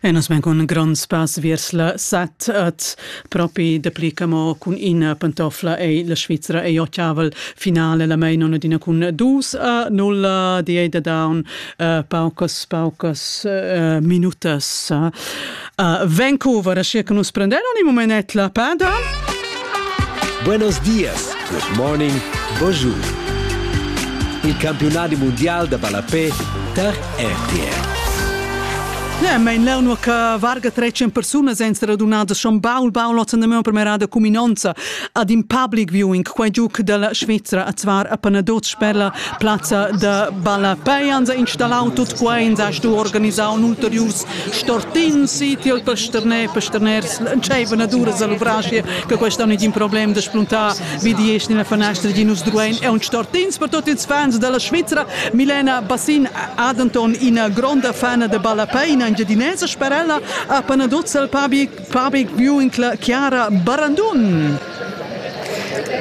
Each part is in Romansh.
Enas men cun grond spass viers la set et propi dapli camo cun ina pantofla ei la Svizra ei ottavel finale la mein on adina cun dus a nulla di ei da down uh, paucas paucas uh, minutas uh, Uh, Vancouver, aschia che nus prenderon il moment la pada. Buenos dias, good morning, bonjour. Il campionati mondial da ballapé tar RTR. Ja, mein lerno che varga 300 persone sono radunate schon baul baul notzen de premerada cuminonza ad in public viewing quai giuc della Svizzera a zvar a Panaduz per la plazza da ballapei hansa installau tut quai in sa stu organisau un ulterius Stortins si tiel pasterner pasterners entscheivan ad uras all'uvrascia che quest anno един problem da spuntar vi di esch nella fanestra di nus druein e un stortins per tutti ils fans della Svizzera Milena Bassin ad Anton ina gronda fana de ballapei in engiadinesa sperella a Panaduzzal Public Public Viewing Chiara Barandun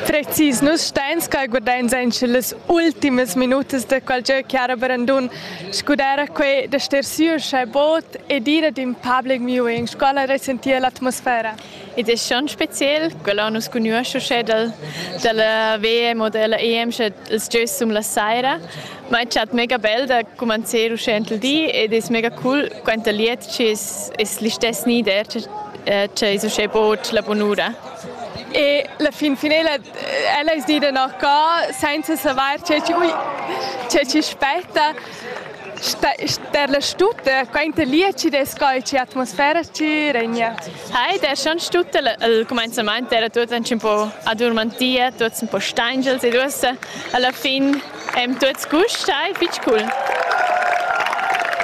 Precis, nus steins ca guardain sen las ultimas minutas de qual gieu Chiara Barandun Scudare quei da star siu sche bod e dire in public viewing scola resentir l'atmosfera. Ed è schon speziell, quella nus conosce sche dal, dalla VM oder la EM sche els giois sum la saira, ma è chat mega bel da comencer uschè il di ed è mega cool quant liet ci es, es l'istess nider che, che es uschè bod la bunura. E la fin finala ella es dida no co, senza savair che chi, ui, che chi spetta, ster la stutta, quainta lieci des coi ci atmosfera ci regna. Hi, der schon stutta al comenzament era tuts un po adurmantia, tuts un po stangels e duossa alla fin Eim tuots gust, stai fich cool.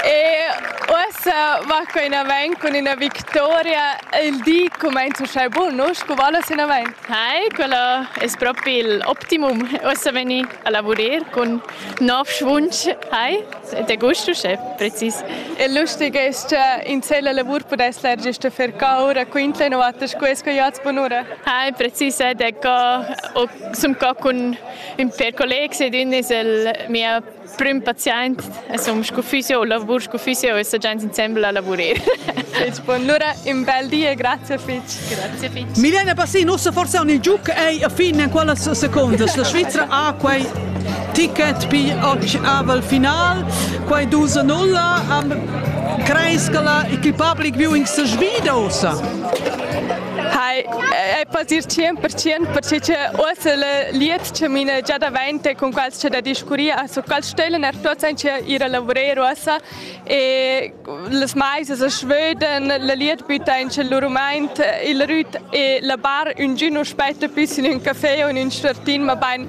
E uossa va qua in avanti cun üna victoria. Il di cumainza uschè bun, no? Sco va las in avant? Hi, quello es propi il optimum. Uossa vegni a lavurer cun nov schwunsch. Hi, ed è gust uschè precis. E lustig es cha in la lavur pudess lerger sta fer caura, quintla no vatta scues co jats bunura. Hi, precis, ed è co, sun co cun Per collegs ed ün es el mia prüm paziaint e sun scu fysio, lavur scu fysio e sta giaint insembel a lavurer. Fitch, allura un bel di e grazie Fitch. Grazie Fitch. Milena Bassin, ussa forse on il giuc ei a fin en quellas secondas. La Svizra ha quei ticket pi oggi aval final, quei 2 a 0, am creis che la equipa viewing se svida ussa. Hai, è pasir 100% perché che uossa le liets che mine già davente con quals c'è da discuria, su quals stellen er tots ein che ir a lavorer uossa e les maises a Schweden, le liet bitta in c'è l'urumaint, il rüt e la bar un giù non spetta più in un caffè o in un startin, ma bein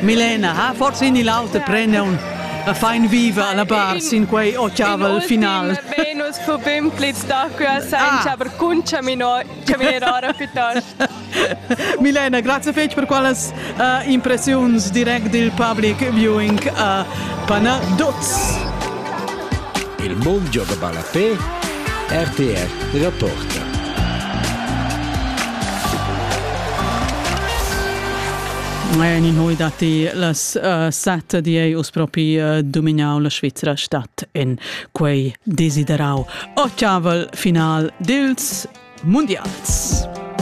Milena ha forsa in l'auter prendion a fein viva la bar sin quei ottavel final. Venus fu bim plits da quella senza per cun caminer ora piuttosto. Milena, grazie fetg per quellas uh, impressiuns direct dil public viewing uh, Panaduz. Il mondo da Balapé, RTR della Porta. Majan in hui datti las uh, sette di ei us propi uh, dumignau la Svizzera stat in quei desiderau. O ciavel final dils mundials.